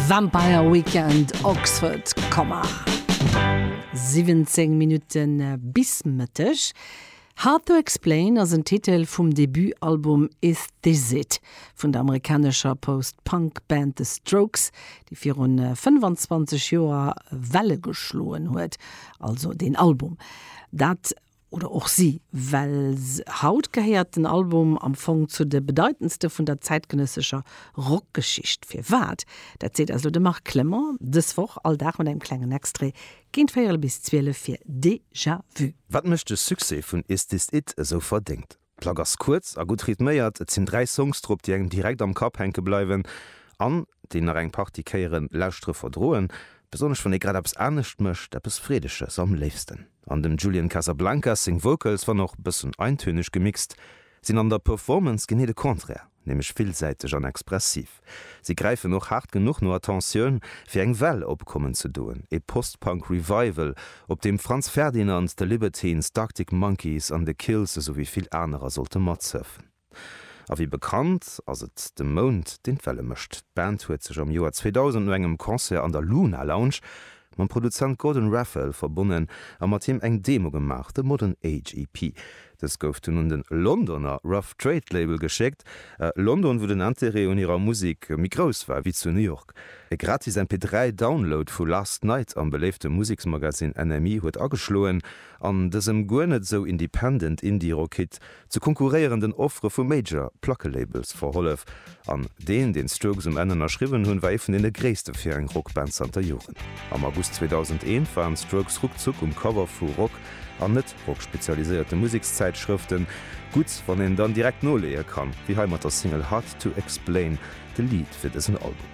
Vampire Weekend Oxford Commer 17 Minutte bis Mëtteg. Hard to Explain ass en Titel vum Debutalbum Is This It? vun der amerikanescher Post-Punk Band The Strokes, déi virun 25 Joer Welle geschloen huet, also den Album. Dat oder och si, well haut gehéiert den Album am Fong zu de bedeitendste vun der zäitgenëssescher Rockgeschicht. Firwat? Dat seet eis elo de Marc Clement dës Woch, all Dag mat engem klengen Extrait géint véierel bis zwielef fir Déjà Vu. Wat mécht de Succès vun Is This It esou verdéngt? D'Plack ass kuerz a gutt rhythméiert, et sinn dräi Songs drop, déi engem direkt am Kapp hänke bleiwen an déi nach eng Partie Kéieren lauschtere verdroen, besonnesch wann ee grad eppes anescht mécht, eppes Freedeges am léifsten. An dem Julian Casablancas seng Vocals, wann och bëssen eintönig gemixt, sinn an der Performance genee de Contraire. nämlech villsäiteg an expressiv. Si gräifen och haart genuch no Attentioun, fir eng Well opkommen ze doen, e Post-Punk Revival, op deem Franz Ferdinand, The Libertines, d'Arctic Monkeys an The Kills esouwéi vill anerer sollte matsëffen. A wéi bekannt, ass et de Mound, deen d'Welle mécht. D'Band huet sech am Joer 2000 no engem Concert an der Luna Lounge mam Produzent Gordon Raphael verbonnen a mat him eng Demo gemaach, The Modern Age EP, Dës gouf dunn un de Londoner Rough Trade Label geschéckt, London, wou den Interêt un hirer Musek méi grouss war wéi zu New York. E gratis MP3 Download vu Last Night am beléifte Museksmagazin NME huet ageschloen an dësem guer net esou independent Indie-Rock-Hit zu konkurréierenden Offere vu Major Plackelabels verhollef. An deen, deen d'Strokes um Enn ënnerschriwwen hunn, war ee vun deene gréisste fir eng Rockband zanter Joren. Am August 2001 waren d'Strokes ruckzuck um Cover vu Rock an net-Rock-spezialiséierte Musekszäitschrëften. Gutt, wann een dann direkt noleeë kann, wéi hei mat der Single Hard to Explain, de Lead fir dësen Album.